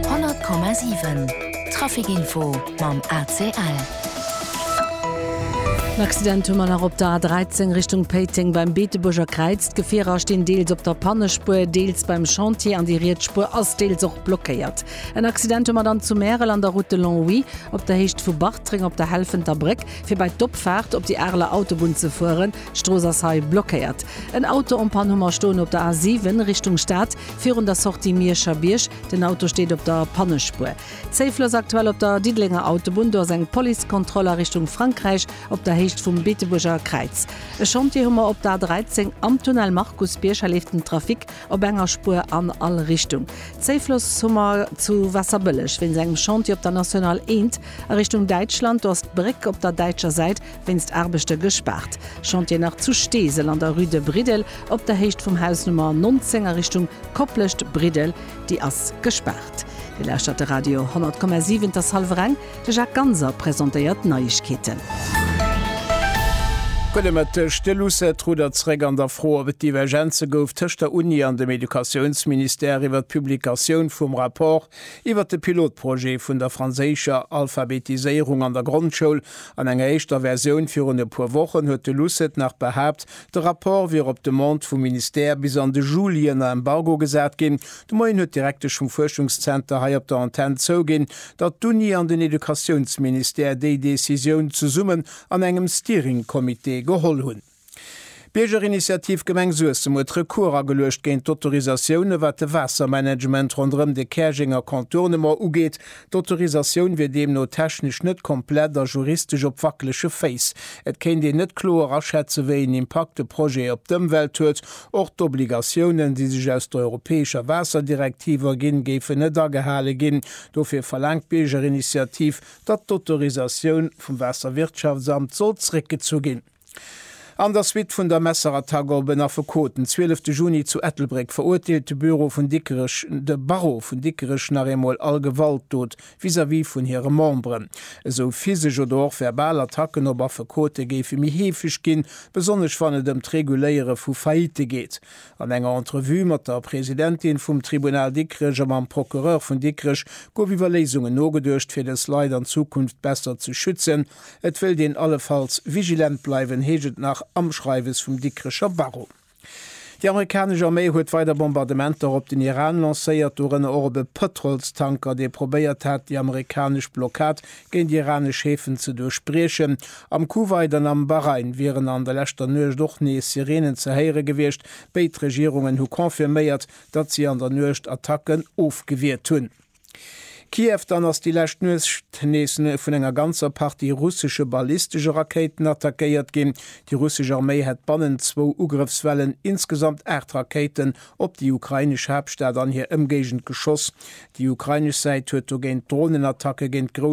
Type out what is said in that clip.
100,7 Traficinfo mam ACL. En Accident hu mer nach op der A13 Richtung Péiteng beim Beetebuerger Kräiz. D'Gefierer stinn deels op der Pannespuer, deels beim Chantier an déi riets Spuer ass deels och blockéiert. En Accident hu mer dann zu Märel an der Route de Longwy op der Héicht vu Bartreng op der Helfenter Bréck, fir bei d'Opfaart op déi Areler Autobunn ze fueren. D'Strooss ass hei blockéiert. En Auto en Panne hu mer stoen op der A7 Richtung Stad, virun der Sortie Mierscher Bierg. Den Auto steet op der Pannespuer. Zéifel ass aktuell op der Diddelenger Autobunn. Do ass eng Policekontroll a Richtung Frankräich op der Héicht vum Beetebuerger Kräiz. E Chantier hu mer op der A13 am Tunnel Markusbierg. Hei leeft den Trafic op enger Spuer an all Richtung. Zéifloss hu mer zu Waasserbëlleg wéinst engem Chantier op der National 1 a Richtung Däitschland. Do ass d'Bréck op der däitscher Säit Wéinst Aarbechte gespaart. Chantier nach zu Steesel an der Rue de Briddel op der Héicht vum Haus Nummer 19 a Richtung Koplescht, Briddel, déi ass gespaart. Dir lauschtert de Radio 100,7, 't ass hallwer eng. De Jacques Ganser presentéiert d'Neiegkeeten. Gudde Mëtteg. De Lucet rudert zeréck an der Fro, ob et Divergenze gouf tëscht der Uni an dem Educatiounsministère iwwert d'Publikatioun vum Rapport Iwwert de Pilotprojet vun der franséischer Alphabetiséierung an der Grondschoul an enger éischter Versioun virun e puer Wochen huet de Lucet nach behaapt, de Rapport wier op Demande vum Ministère bis an de Juli ënner Embargo gesat ginn. De Moien huet d'Direktesch vum Fuerschungszenter hei op der Antenn zouginn, datt d'Uni an den Educatiounsministère déi Decisioun zesummen an engem Steering-Comité geholl hunn. D'Biergerinitiativ Gemeng Suessem huet Recours ageluecht géint d'Autorisatioune wat de Waassermanagement ronderëm de Käerjenger Contournement ugeet. D'Autorisatioun wier deemno technesch net komplett a juristesch op wackelege Féiss. Et kéint een net kloer aschätzen, wéi een Impakt de Projet op d'Ëmwelt huet. Och d'Obligatiounen, déi sech aus der europäescher Waasserdirektiv erginn, géifen net agehale ginn. Dofir verlaangt d'Biergerinitiativ, datt d'Autorisatioun vum Waasserwirtschaftsamt soll zréckgezu ginn. An der Suite vun der Messerattack gouf en Affekot den 12 Juni zu Ettelbréck verurteelt, de Bureau vun Dikrech, de Barreau vun Dikrech nach eemol all Gewaltdot vis-à-vis vun hire Memberen, esou physesch oder och verbal Attacken op Affekote géife méi heefeg ginn, besonnesch wann et ëm d'Reguléiere vu Faillitte geet. An enger Entrevue mat der Presidentin vum Tribunal Dikrech a mam Procureur vun Dikrech gouf iwwer Léisungen nogeduecht, fir dës Leit an Zukunft besser ze schützen. Et wëllt een allefalls vigilent bleiwen, heescht et nach am Schreiwes vum Dikrecher Barreau. Déi amerikanesch Arméi huet weider Bombardementer op den Iran lancéiert, dorënner och op e Pëtrolstanker, dee probéiert hat, déi amerikanesch Blockad géint iranesch Häfen ze duerchbriechen. Am Kuwait an am Bahrain wieren an der leschter Nuecht och nees Sireenen ze héiere gewiescht. Béid Regierungen hu confirméiert, datt si an der Nuecht Attacken ofgewiert hunn. Kiew, Dann ass déi lescht Nuecht nees vun enger ganzer Partie russesche ballistesche Rakéiten attackéiert ginn. Déi russesch Arméi hätt bannent zwou Ugrëffswellen insgesamt aacht Rakéiten op déi ukrainesch Haaptstad an hir Ëmgéigend geschoss. Déi ukrainesch Säit huet dogéint Dronenattacke géint grouss